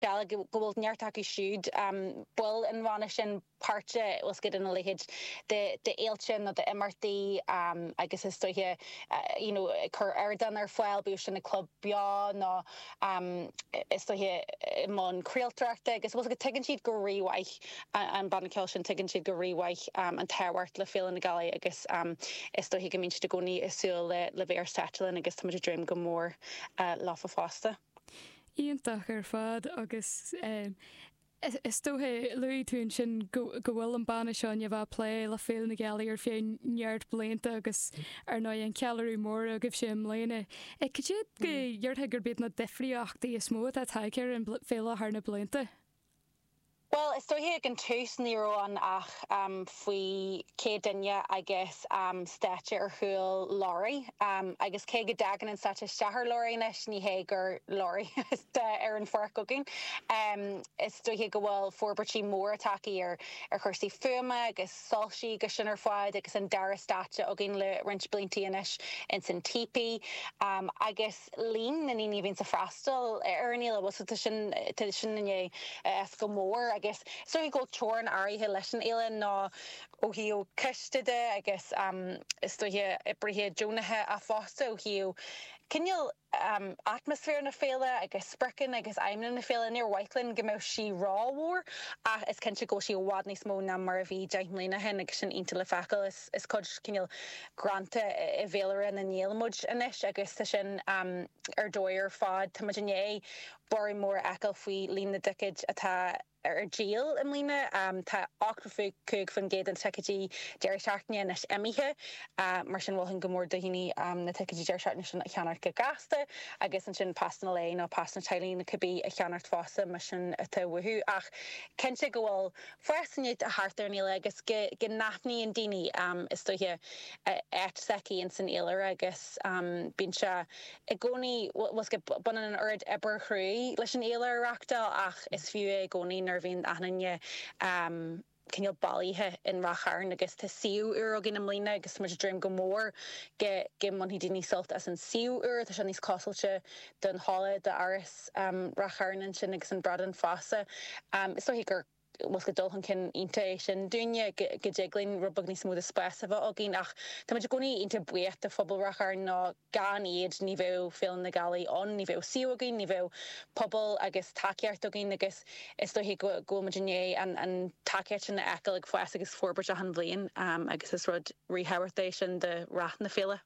Dála go bhfuil neart acu siúd, baill an bhanna sin, páirteach, bhfuil 's agat, ina leithéid de fhéilte nó d'imeachtaí agus is dóiche, you know, ag cur ardán ar fáil, bíodh sin ag club beo nó is dóiche i mbun craoltóireachta agus bhfuil 's agat, tuigeann siad go rí-mhaith, an banna ceoil sin, tuigeann siad go rí-mhaith an tábhacht le Féile na Gealaí agus is dóiche go mbíonn siad i gcónaí ag súil le bheith ar stáitse linn agus tá muid ag dréim go mór leofa fosta. Iontach ar fad agus is dócha, luaigh tú ansin go bhfuil an banna seo i ndiaidh a bheith ag plé le Féile na Gealaí ar feadh neart blianta agus ar ndóigh an ceiliúradh mór agaibhse i mbliana. Cad iad go ndéarfá gurb iad na difríochtaí is mó atá tagtha ar an bhféile thar na blianta? Bhuel, is dóiche ag an tús ní raibh ann ach faoi céad duine agus stáitse ar chúl lorry, agus cé go dtagann an stáitse isteach ar lorry anois, ní hé gur lorry atá ar an pháirc againn. Is dóiche go bhfuil forbairtí móra tagtha ar chúrsaí fuaime agus soilsí agus sin ar fad agus an dara stáitse againn le roinnt blianta anois ins an Teepee, agus. líon na ndaoine a bhíonns a' freastal ar an fhéile, bhfuil 's agat, tá sin, tá sin i ndiaidh fás go mór agus is dócha go bhfuil teorainn áirithe leis an fhéile ná ó thaobh coiste de agus is dócha oibrithe deonacha ach fosta ó thaobh cineál atmaisféar na féile agus spriocanna agus aidhmeanna na féile, níor mhaith linn go mbeadh sí ró-mhór ach is cinnte go bhfuil sí i bhfad níos mó ná mar a bhí deich mbliana ó shin agus sin iontach le feiceáil. Is cuid cineál greanta i bhféilire na nGael muid anois agus tá sin ar dóigh ar fad. Táimid i ndiaidh borradh mór a fheiceáil faoi líon na dticéad atá ar díol i mbliana. Tá 85% de na ticéidí deireadh seachtaine anois imithe, mar sin mholfainn go mór do dhaoine na ticéidí deireadh seachtaine sin a cheannacht go gasta agus ansin pasanna lae nó pasanna teaghlaigh nó cibé a cheannacht fosta más sin atá uathu. Ach cinnte go bhfuil. Fás i ndiaidh a theacht ar an fhéile agus go n-aithníonn daoine, is dóiche, an áit s'aici ins an fhéilire agus bíonn sé i gcónaí, bhfuil 's agat, baineann an oiread oibre chruaidh leis an fhéile a reachtáil ach is fiú é i gcónaí nuair a bhíonn achan duine cineál bailithe in Rath Chairn agus tá suíomh úr againn i mbliana agus tá muid ag dréim go mór go mbainfidh daoine sult as an suíomh úr, tá sé níos clósáilte don halla d'áras Rath Chairn ansin agus an Bradán Feasa. Is dóiche gur, bhfuil 's agat, dul chun cinn iontach é sin dúinne, go dtig linn rud beag níos mó de spás a bheith againn ach tá muid i gcónaí iontach buíoch de phobal Rath Chairn nó gan iad ní bheadh Féile na Gealaí ann, ní bheadh suíomh againn, ní bheadh pobal agus tacaíocht againn agus is dóiche go bhfuil muid i ndiaidh an tacaíocht sin a fheiceáil ag fás agus forbairt achan bhliain agus is rud ríthábhachtach é sin do rath na féile.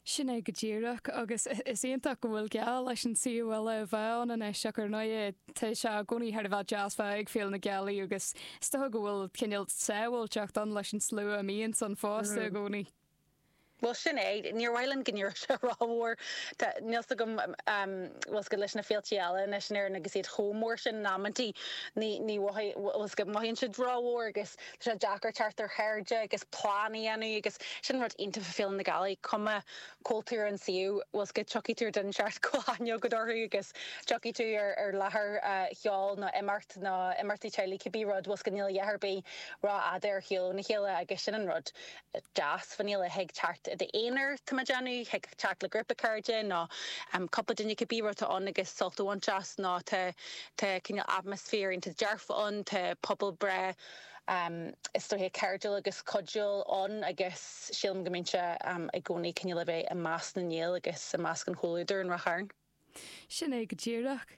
Sin é go díreach, agus is iontach go bhfuil geall leis an suíomh eile a bheith ann anois, ach ar ndóigh tá sé i gcónaí thar a bheith dearfa ag Féile na Gealaí agus is dócha go bhfuil cineál sábháilteacht ann leis an slua a bhíonns ann fosta i gcónaí. Bhuel, sin é. Níor mhaith liom go n-éireodh sé rómhór. Tá, níl 's agam, bhfuil 's agat, leis na féiltí eile anois in Éirinn agus iad chomh mór sin in amantaí, ní, ní, bhfuil 's agat, mothaíonn siad rómhór agus, Tá sé deacair teacht ar chairde agus plean a dhéanamh agus sin rud iontach faoi Féile na Gealaí, cuma cá bhfuil tú ar an suíomh, bhfuil 's agat, tiocfaidh tú ar dhuine inteacht go bhfuil aithne agat orthu agus tiocfaidh tú ar láthair cheoil nó imeacht nó imeachtaí teaghlaigh cibé rud, bhfuil 's agat, níl a dhath ar bith rófhada ar shiúl óna chéile agus sin an rud. deas fán fhéile, thig teacht i d'aonar, tá mé ag déanamh, thig teacht le grúpa cairde nó cúpla duine cibé rud atá ann agus sult a bhaint as nó tá cineál atmaisféar iontach dearfa ann, tá pobal breá is dóiche cairdiúil agus cuidiúil ann agus sílim go mbíonn sé i gcónaí cineál le bheith i measc na nGael agus i measc an chomhluadair in Ráth Chairn. Sin é go díreach.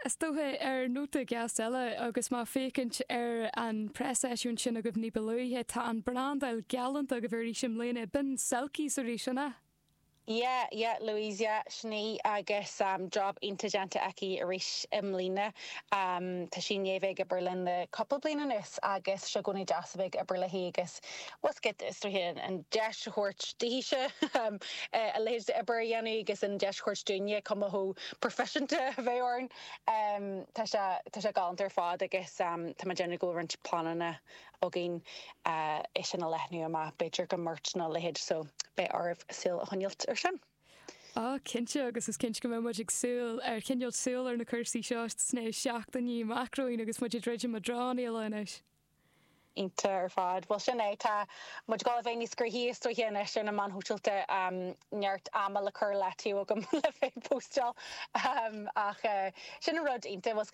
Is dócha, ar nóta gasta eile, agus mé ag féachaint ar an preaseisiúint sin agaibh ní ba luaithe, tá an brandáil galánta agaibh arís i mbliana, b'in selkies arís, an ea? Yeah, yeah, Louise, yeah, sin í, agus job iontach déanta aici arís i mbliana. Tá sí i ndiaidh bheith ag obair linn le cúpla bliain anuas, agus tá sé i gcónaí deas a bheith ag obair léi agus bhfuil 's agat, is dóiche an deis a thabhairt daoithese a leithéid d'obair a dhéanamh agus an deis a thabhairt dúinne cuma chomh proifisiúnta a bheith orainn. Tá sé, tá sé galánta ar fad agus tá mé ag déanamh go bhfuil roinnt pleananna againn é sin a leathnú amach, b'fhéidir go merch nó a leithéid, so beidh oraibh súil a choinneáilt ar sin. Á, cinnte, agus is cinnte go mbeidh muid ag súil, ag coinneáilt súil ar na cúrsaí seo sna seachtainí amach romhainn agus muid ag druidim i dtreo an Fhéile anois. Iontach ar fad. Bhuel, sin é. Tá muid ag dul a bheith níos gnoithí is dóiche anois ar na meáin shóisialta. Neart ama le cur i leataobh agam le bheith ag póstáil. Ach sin an rud iontach.